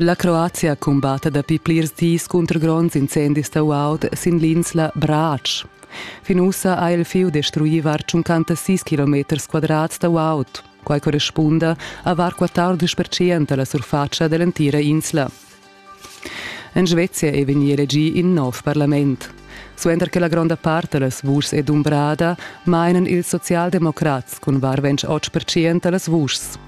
La Croazia cumbatta dapi plirs dis cunter gronds incendis da guaud sin l'insla Brač. Fin ussa ha il fieu destruì var 56 km quadrats da guaud. Quai correspunda a var 14 percent da la surfatscha da l'entira insla. En Svezia è vegnì elegì in nov parlament. Suenter che la gronda part da las vuschs è dumbrada, mainan ils socialdemocrats cun var 28 percent da las vuschs.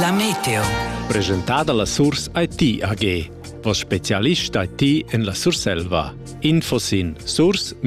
La Meteo. Presentada la Surs IT AG. Vos specialist IT en la Surselva. Info sin surs-it.ch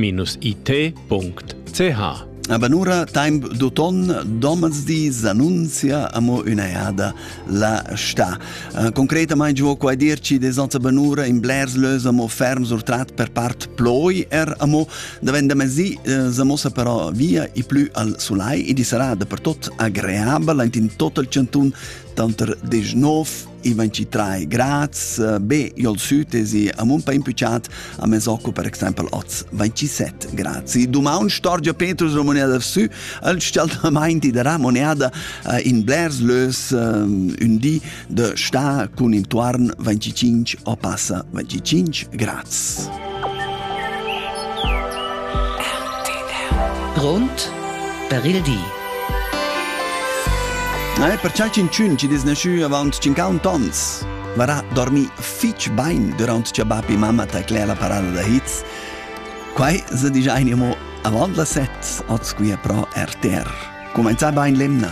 Abanura temp d'auton domesdi s'annunzia amo üna eada la sta. Uh, concretamaing giò qua dirci de Sanza Banura in blers lös amo ferm surtrat per part ploi er amo Davent da mezdi eh, sa mossa però via e plü al sulai e di sarà dappertut agreabel in total cantun tanter 19 e 23 grads. Eh, be jol sud es i a mun pa impüchat a Mesoco per exempel oz 27 grad. Si dumaun storgia Petrus la moneda sü al staltamaint da moneda eh, in blers lös un di de sta cun intuarn 25 o passa 25 grads. Grund per il di. Eh, per cial cincun ci dis nesciu avant 51 tons. Varà dormi fitch bain durant che bapi mamma taclea la parada da hits. Quai se digia animo avant la set, oz qui è pro RTR. Comenza bain lemna.